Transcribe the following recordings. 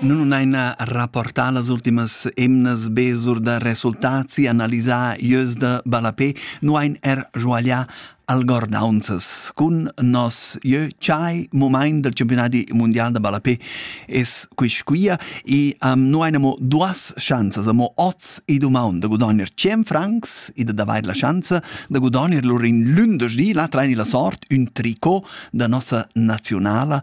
Nun unaina rapportà las ultimas emnas be sur da resultats e analisà ieus da ballapè, nu hain er sguaglià algordaunzas. Cun nos jeu chai mumaint dal Championadi mundial da ballapè es quist quia e um, nu hain amo duas schanzas, amo oz e dumaunt da gudogner 100 francs e d'avair la schanza da gudogner lur in lündeschdi, là traini la sort, ün tricot da nossa naziunala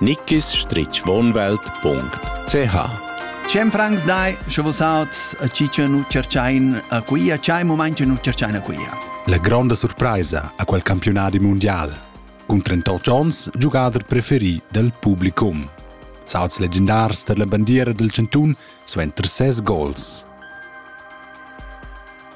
nickisstrichwohnwelt.ch Cem francs dai, sche vus auts a chi che nu cerchain a quia, chai moment che nu cerchain a quia. La gronda surpraisa a quel campionadi mondial. Cun 38 onns giugader preferi dal publicum. Sauts legendars per la bandiera del Cantun suenter ses gols.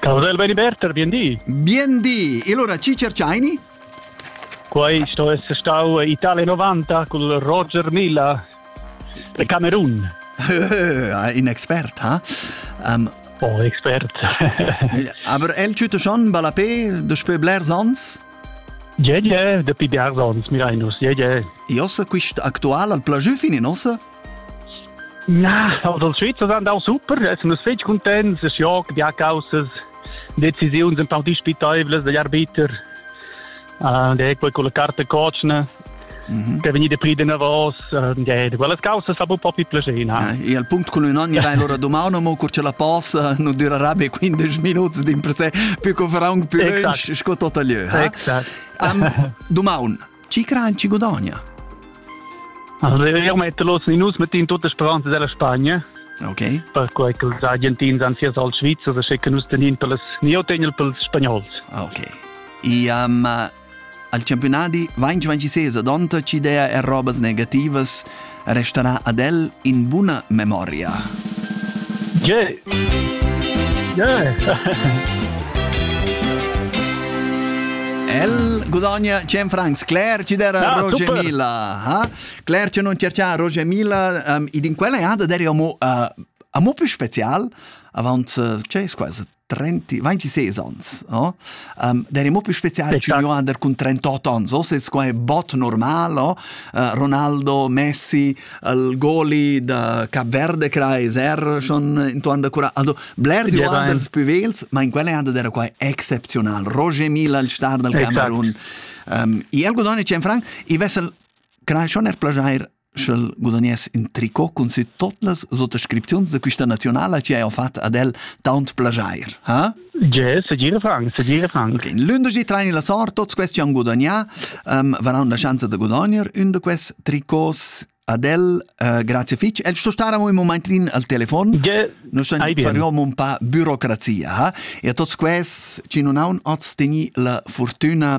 Cavdel Beniberter, bien di. Bien di. E allora ci cerciaini? Quai sto essere stau Italia 90 col Roger Milla de Camerun. In expert, ha? Um, oh, expert. Aber el tüte schon balapé daspö blers ans? Je, je, dapi blers ans, mirainus, je, je. E ossa quist actual al plajü finin ossa? Na, also die Schweizer sind auch super, essen uns fest content, es jagt die Hackaussens, Decisionen sind auch die Spitäbel, die Arbeiter, äh, die quelle con le carte coachne, mhm. che venire prendere vos, äh, quelle cause fa un po' più piacere. Eh, e al punto con un anno rein l'ora domani, ma cor ce la passa, non durerà be 15 minuti, dimper se, più che farà un più, esatto. sco tot a lieu. Eh? Esatto. Am, domani, Chi cran chi gudogna? Also wir metter los in us mit in tutta speranza della Spagna. Okay. Perquei che els argentins han sias al Svizzer e schicken us den in per les neotenel per les spagnols. Ah, okay. E um, al campionati 2026 donta ci idea e robas negativas restarà ad el in buna memoria. Yeah! Yeah! El gudogna 100 francs. Claire ci dera ah, Roger super. Mila. Ha? Claire ci non cercia Roger Mila. Um, ed in quella ada deri amo, uh, amo più special. Avant, uh, c'è quasi 30, 26 ans. Oh? Um, der è molto speciale eh, certo. under con 38 anni. So se qua è bot normal, oh? uh, Ronaldo, Messi, il goli da Capverde Kreis, er schon intorno da cura. Also, bler di anders pivels, ma in quelle anda dera qua è eccezional. Roger Mila, il star del Camerun. Um, e el godone c'è in franc, i vessel, crai schon er plagiare sch'el gudagness in tricot cun si tot las sottoscripziuns de quista nazionala chi haja fat ad el taunt plagiair, ha? Ge, segir Frank, segir Frank. Okay, in lündeji traini la sort, tots questi han gudagnà, um, varan la schanza de gudagner un de quest tricots ad el, uh, grazie fitch. El sto stare un momentrin al telefon. Ge, non sto fariom un pa burocrazia, ha? E a tots quest, ci non haun oz teni la fortuna